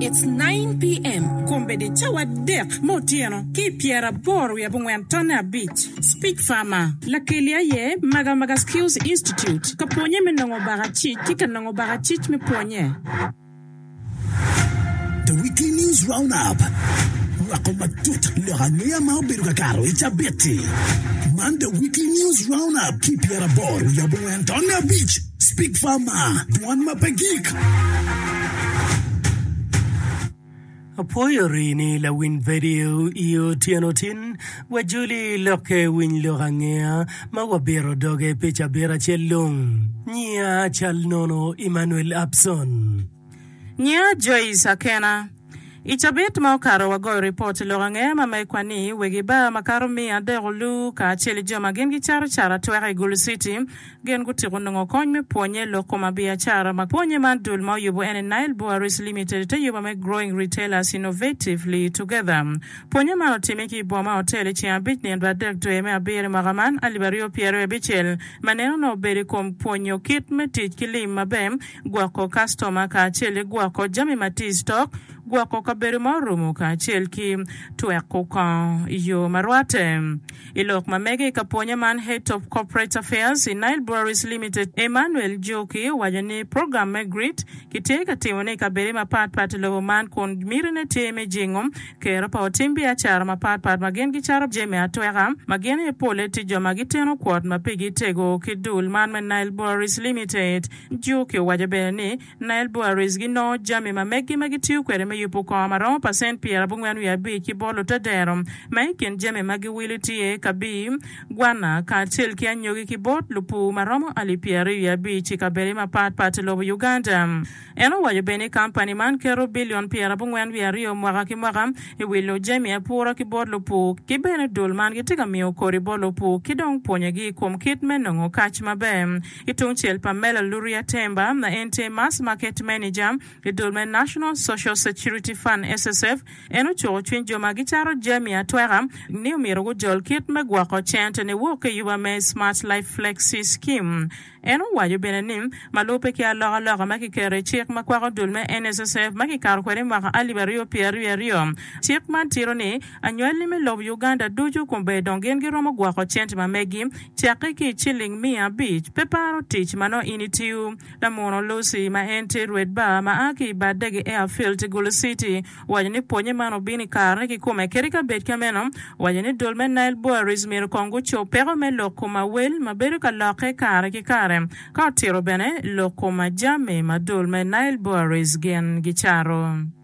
It's nine PM kombeddi cawa adek me otyeno ki pyera aboro wiye abongwen tonne abic. Speech Farmer. Lakeli aye Magamaga Skills Institute ka pwonye me nongo baka cic ki ka nongo baka cic me pwonye. The Weekly News Roundup rwako matut lok angeya ma obedo ka kato i cabit-ti. Man The Weekly News Roundup ki pyera aboro wiye abongwen tonne abic. Speak Farmer, dwan ma pe gik. Apwoyo rini lawiny vedio i otyeno tin. Wajoli lokke winy lok angeya ma wabito doge pi cabit acel long. Nyia cal nono Emmanuel Abson. Nia Joyce Akena, I cabit ma okato wagoyo ripot i lok ange ma ma ikwa ni wegi bar makato miya adek olu kacel i jo ma gin gicato cara atweka i Gulu City gin gutiko nongo kony me pwonye i lok kom abiacara ma pwonye man dul ma oyubo en i Nile Breweries Limited ite yuba me Growing Retailers Innovatively Together pwonye man otime ki i boma otel i ceng abic nino dwe adek dwe me abiro i mwaka man alip aryo pyeraryo abicel ma neno nongo obedo i kom pwonyo kit me tic ki lim maber gwoko kastoma kacel ki gwoko jami ma tye i stock, gwoko kabedo ma orumo kacel ki tweko kongo i yo ma rwatte. I lok ma mege i ka pwonye man, Head of Corporate Affairs i Nile Breweries Limited, Emmanuel Joki owaco ni program me GRIT kitye ka timone i kabede mapat pat i lobo man kun mitine tye me jingo kero pa otim biacara mapat pat ma gin gicato jami atweka ma gin aye polle tye jo ma giteno kwot ma pigi tego ki dul man me Nile Breweries Limited. Juki owaco bene ni, Nile Breweries ginongo jami ma meggi ma gitiyo kwede me yubo kongo ma romo pacent pyera abongwen wiye abic ki bolo te dero. Ma i kin jami ma giwilo tye kabii, gwanna, kacel ki anyogi ki bot lupur ma romo alip pyeraryo wiye abic i kabedde mapat pat i lobo Uganda. En owaco bene ni kampani man keto bilion pyera abongwen wiye aryo mwaka ki mwaka i wilo jami apura ki bot lupur, ki bene dul man gitye ka miyo kodi bot lupur ki dong pwonyogi i kom kit me nongo kac maber. Ki tungcel, Pamela Luria Temba ma en tye Mass Market Manager i dul me National Social Security Fund, SSF, en ocuko cwiny jo ma gicato jami atweka ni omyero gujol kit me gwoko cente niwok ki yuba me Smart Life Flexi Scheme. En owaco bene ni, ma lubbe ki alokaloka ma kiketo i cik ma kwako dul me NSSF ma kikato kwede i mwaka alip aryo pyer aryo aryo, cik man tito ni, Anywalli me lobo Uganda ducu kobbe dong gin giromo gwoko cent ma megi cakke ki i ciling miya abic. Pe paro tic ma nongo in itiyo. Lamuno Lucy ma en tye rwed bar ma a ki i bar dege Airfield i Gulu City owaco ni pwonye man obino i karene kikome kadi ka bed ka meno owaco ni dul me Nile Boeries myero kong gucob peko me lok kom awel ma bedo ka lokke kare ki kare ka otito bene lok kom ajami ma dul me Nile Boeries gin gicato.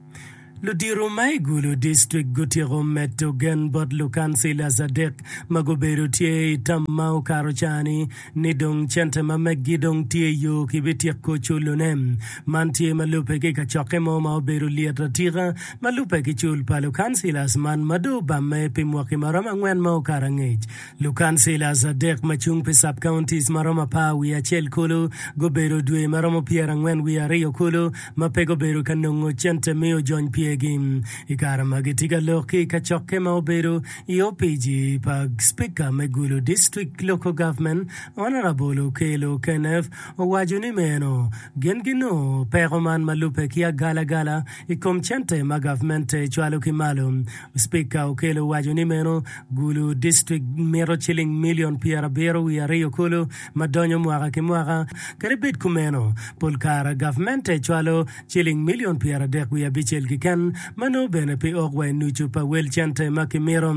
Ludito ma i Gulu District gutyeko medo gen bot lukancilas adek ma gubedo tye i tam ma okato caa-ni ni dong cente ma meggi dong tye i yo kibityeko culone. Man tye ma lubbe ki kacokke mo ma obedo lyet atika ma lubbe ki cul pa lukancilas man ma dong obamme pi mwaki maromo angwen ma okato angec. Lukancila adek ma cung pi sub-counties ma romo apar wiye acel kulu gubedo dwe ma romo pyerangwen wiye aryo kulu ma pe gubedo ka nongo cente me ojony pyergi. I kare magi tye ka lok ki i kacokke ma obedo i opic pa Spika me Gulu District Local Government, Honourable Okello Kenneth owaco ni meno gin ginongo peko man ma lubbe ki agalagala i kom cente ma gavmente cwalo ki malo. Spika Okello owaco ni meno gulu district mito ciling milion pyerabiro wiye aryo kulu ma donyo mwaka ki mwaka. Kadi bed kumeno, pol kare gavmente cwalo ciling milion pyeradek wiye abicel keken ma nongo bene pe ok wa i nucu pa wel cente ma kimito.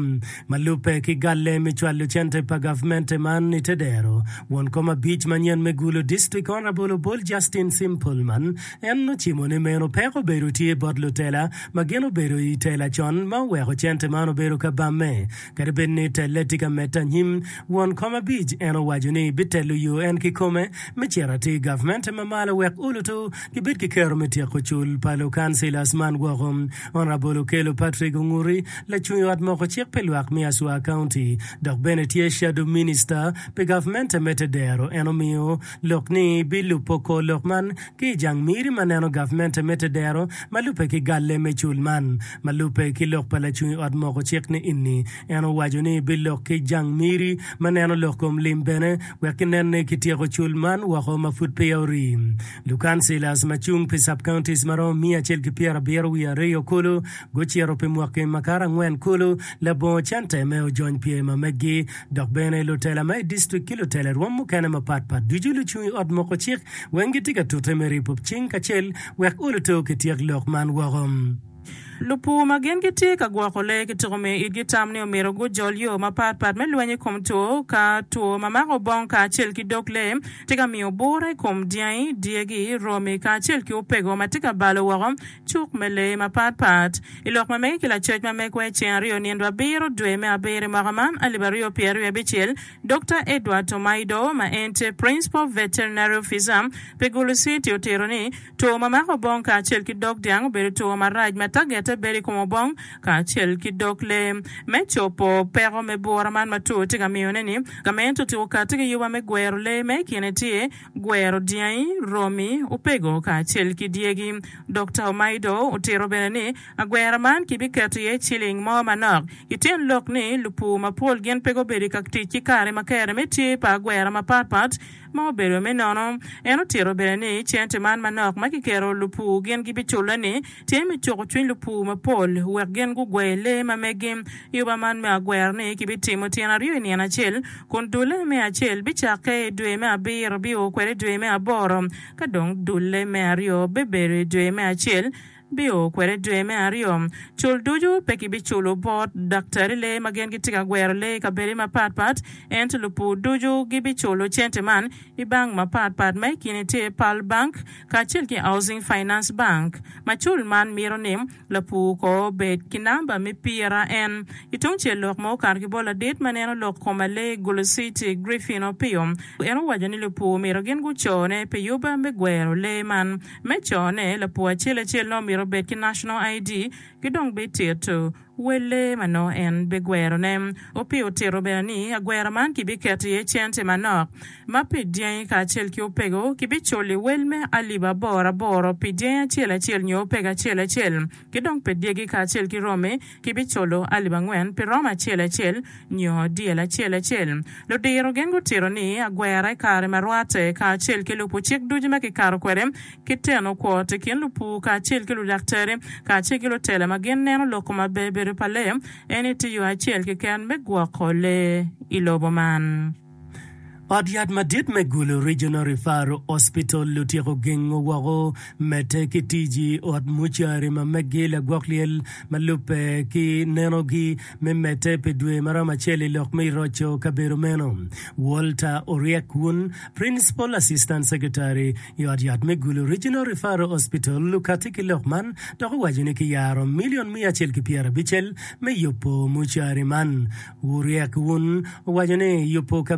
Ma lubbe ki galle me cwalo cente pa gavmente man i te dero, won kom abic manyen me gulu district Honourable Obol Justin Sim Pullman en ocimo ni meno peko obedo tye bot lutela ma gin obedo i tela con ma oweko cente man obedo kabamme. Kadi bed ni telle tye ka medde anyim, won kom abic en owaco ni bitelo yo en kikome me cito atir gavmente ma malo wek ulutu gibed ki kero me tyeko cul pa lukancilas man woko. Honourable Okello Patrick Onguti, lacung ot moko cik pi lwak me Aswa County, dok bene tye Shadow Minister pi gavmente me tedero en omiyo Lok ni bilubo kor lok man ki i jang miri ma neno Gavmente me Tedero ma lubbe ki galle me cul man. Ma lubbe ki lok pa lacung i ot moko cik ni ini, en owaco ni bilok ki jang miri ma neno lok kom lim bene wek ginen ni kityeko cul man woko ma pud peya orii. Lukansilas ma cung pi sub-counties ma romo miya acel ki pyera abiro wiye ariyo kulu gucito pi mwaki ma kato angwen kulu labongo cente me ojony pyema meggi dok bene lutela ma i distrik ki lutela i rwom mukene mapat pat ducu lucung i ot moko cik weng gitye ka tute me ripo cing kacel wek oluto kityek lok man woko. Lupur ma gin gitye ka gwoko lee ki tuko miyo itgi tam ni omyero gujol yo mapat pat me lweny i kom two ka two ma mako obong kacel ki dog lee tye ka miyo bura i kom dyangi, dyegi, romi kacel ki opego ma tye ka balo woko. Cuk me Lee mapatpat i lok ma mege ki lacoc ma megwa i ceng aryo nino abiro dwe me abiro i mwaka man alip aryo ki pyeraryo ki abicel, Dokta Edward Tomaido ma en tye Principal Veterinary Officer pi Gulu City otito ni, Two ma mako obong kacel ki dog dyang obedo two marac ma tagette bedo i kom obong kacel ki dog lee. Me cobo peko me bwura man ma two tye ka miyone-ni, gamente otyeko kati ki yuba me gwero lee ma i kine tye, gwero dyangi, romi, opego kacel ki dyegi. Dokta Omaido otito bene ni, agwera man kibiketo iye ciling mo manok. I tyen lok ni, lupur mapol gin pe gubedo i ka tic ki kare ma kere me tye pa agwera mapat pat ma obedo me nono. En otito bene ni, cente man manok ma kiketo lupur gin gibiculle-ni, Tye me cuko cwiny lupur mapol wek gin gugwer lee ma megi. I oba man me agwera-ni, kibitimo tyen aryo i nino acel, kun dulle me acel bicakke i dwe me abiro bio kwede i dwe me aboro, ka dong dulle me aryo bibedo i dwe me acel bio kwede i dwe me aryo. Cul ducu pe kibiculo bot daktari lee ma gin gitye ka gwero lee i kabedo mapat pat, ento lupur ducu gibiculo cente man I bank mapat pat ma i kine tye Pearl Bank kacel ki Housing Finance Bank. Macul man mito ni lapur kor obed ki namba me pira en. I tungcel lok ma okato ki bot ladit ma neno lok kom alee Guliciti Griffin Opio, en owaco ni lupur omito gin gucone pi yuba me gwero lee man. Me cone, lapur acel acel nongo omito obed ki National ID ki dong bititu. Welle ma nongo en bigwerone. Opie otito bene ni agwera man kibiketo iye cente manok ma pi dyangi kacel ki opego kibiculi wel me alip aboro aboro pi dyangi acel acel nyo opego acel acel, ki dong pi dyegi kacel ki romi kibiculo alip angwen pi romo acel acel nyo dyel acel acel. Ludiro gin gutito ni agwera i kare ma rwatte kacel ki lubo cik ducu ma kikato kwede ki tenokwot i kin lupur kacel ki ludaktari kacel ki lutela ma gin neno loko ma ber bedo pa lee eni tye yo acel keken me gwoko lee i lobo man. Ot yat madit me Gulu Regional Referral Hospital otyeko gengo woko medde ki tic i ot mucari ma meggi lagwok lyel ma lubbe ki nenogi me medde pi dwe ma romo acel i lok me roco kabedo meno. Walter Oryek Wun, Principal Assistant Secretary, I ot yat me Gulu Regional Referral Hospital okatti ki lok man dok owaco ni kiyaro milion miya acel ki pyera abicel me yubo mucari man. Wuryek Wun owaco ni yubo kabedo